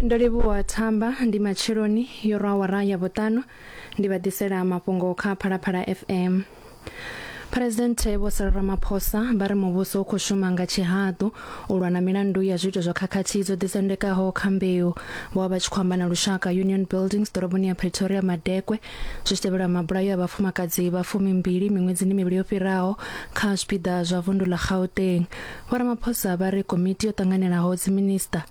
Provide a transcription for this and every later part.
ndo livhuwa thamba ndi matsheloni yo rwa awara ya vhuṱanu ndi vha ḓisela mafhungo kha phalaphala fm phuresidennde vho sala ramaphosa vha ri muvhuso u khou shuma nga tshihaḓu u lwa na milandu ya zwiito zwa khakhathi dzo ḓisendekaho kha mbeu vho vha vha tshi khou amba na lushaka union buildings ḓoroboni ya pretoria madekwe zwi tshi tevhela mabulayo a vhafumakadzi vha fumimbili miṅwedzini mivhili yo fhiraho kha zwipiḓa zwa vundu ḽa gauteng Vho Ramaphosa vha ri komiti yo ṱanganelaho dziminisiṱa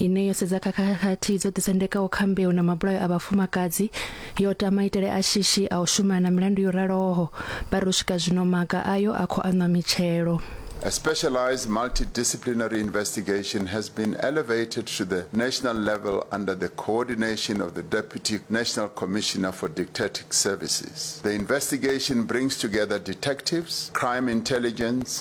ine yo sedza kha khakhathi dzo ḓisendekaho kha mbeu na mabulayo a vhafumakadzi yo ta maitele a shishi a u shumana na milandu yo raloho vha ri u swika zwino maga ayo a khou aṋwa mitshelo. A specialized multidisciplinary investigation has been elevated to the national level under the coordination of the Deputy National Commissioner for Dictatic Services. The investigation brings together detectives, crime intelligence,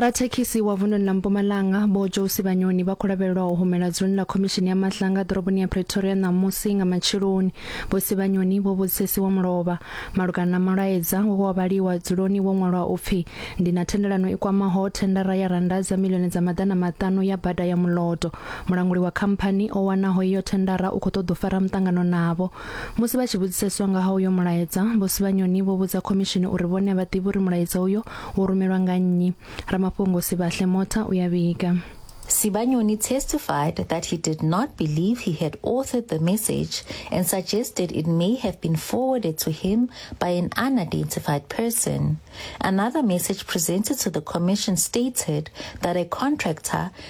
Rathekhisi wa vunḓuni ḽa Mpumalanga Vho Josi Vhanyoni vha khou lavhelelwa u humela dzuloni ḽa khomishini ya mahlanga ḓoroboni ya Pretoria ṋamusi nga matsheloni. Vho Sivhanyoni vho vhudzisesiwa mulovha malugana na mulaedza we wa vhaliwa dzuloni wo ṅwalwa u pfi ndi na thendelano i kwamaho thendara ya rannda dza miḽioni dza maḓana maṱanu ya bada ya Muloto. Mulanguli wa khamphani o wanaho iyo thendara u khou ṱoḓa u fara muṱangano navho. Musi vha tshi vhudziseswa nga ha uyo mulaedza, Vho Sibanyoni vho vhudza khomishini uri vhone a vha ḓivhi uri mulaedza uyo wo rumelwa nga nnyi. Ramafhungo Sibahle Motha u ya vhiga. Sibanyoni testified that he did not believe he had authored the message and suggested it may have been forwarded to him by an unidentified person. Another message presented to the commission stated that a contractor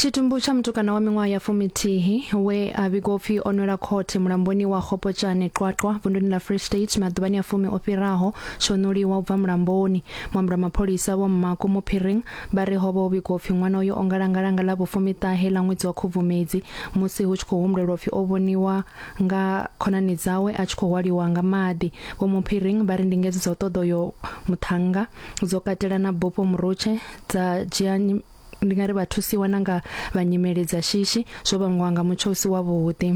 tshitumbu tsha mutukana wa miṅwaha ya fumitihi we a vhigwa upfi o nwela khothe mulamboni wa khopotshane qwaqwa vunduni ḽa free state maḓuvhani a fumi o fhiraho tsho ṋuliwa u bva mulamboni muambi wa mapholisa vho mmako muphiring vha ri ho vha ho vhigwa upfi ṅwana uyo o ngalangalanga ḽa vhufumiṱahe ḽa ṅwedzi wa khubvumedzi musi hu tshi khou humbulelwa upfi o vhoniwa nga khonani dzawe a tshi khou hwaliwa nga maḓi vho muphiring vha ri ndingedzo dza u ṱoḓa uyo muṱhannga dzo katela na bufho murutshe dza dzhia nyi- ndi nga ri vha thusiwa na nga vha nyimele dza shishi zwo vhangwa nga mutsho u si wavhuḓi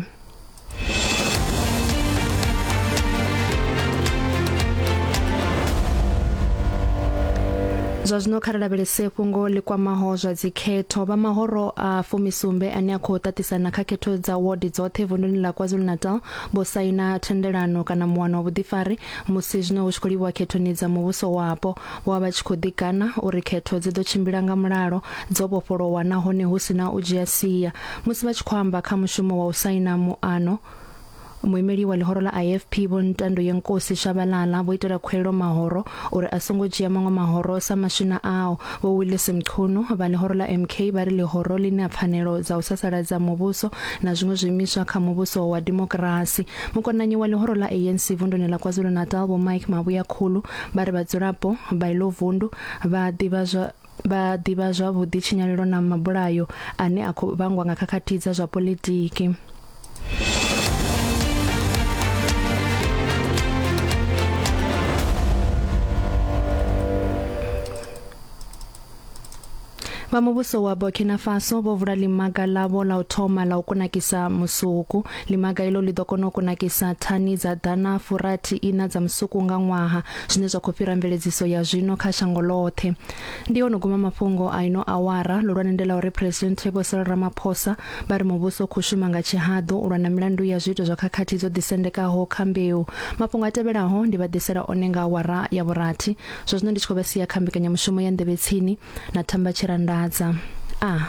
zwa zwino kha ri lavhelese fhungo ḽi kwamaho zwa dzikhetho vha mahoro a fumisumbe ane a khou ṱaṱisana kha khetho dza wodi dzoṱhe vunḓuni ḽa kwazulu-natal vho saina thendelano kana muwano wa vhuḓifari musi zwino hu tshi khou livhuwa khethoni dza muvhuso wapo Vho vha vha tshi khou ḓikana uri khetho dzi ḓo tshimbila nga mulalo, dzo vhofholowa nahone hu si na u dzhia sia. Musi vha tshi khou amba kha mushumo wa u saina muano, muimeli wa ḽihoro ḽa IFP Vho Ntandoyenkosi Shabalala vho itela khuwelelo mahoro uri a songo dzhia maṅwe mahoro sa maswina ao. Vho Willis Mchunu vha ḽihoro ḽa MK vha ri ḽihoro ḽi na pfanelo dza u sasaladza muvhuso na zwiṅwe zwiimiswa kha muvhuso wa dimokirasi. Mukonanyi wa ḽihoro ḽa ANC vunduni ḽa KwaZulu-Natal Vho Mike Mavhuyakhulu vha ri vhadzulapo vha ilo vundu vha ḓivha zwa vha ḓivha zwavhuḓi tshinyalelo na mabulayo ane a khou vhangwa nga khakhathi dza zwa politiki Vha muvhuso wa Burkina Faso vho vula limaga ḽavho ḽa u thoma ḽa u kunakisa musuku. Limaga ilo ḽi ḓo kona u kunakisa thani dza ḓana furathi ina dza musuku nga ṅwaha, zwine zwa khou fhira mveledziso ya zwino kha shango ḽoṱhe. Ndi ono guma mafhungo a ino awara, ḽihulwane ndi ḽa uri Phresidennde Vho Cyril Ramaphosa vha ri muvhuso u khou shuma nga tshihaḓu u lwa na milandu ya zwiito zwa khakhathi dzo ḓisendekaho kha mbeu. Mafhungo a tevhelaho ndi vha ḓisela one nga awara ya vhurathi. Zwa zwino ndi tshi khou vha sia kha mbekanyamushumo ya nḓevhe tsini na thamba tshirandadza. A. Ah.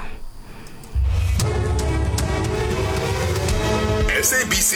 SABC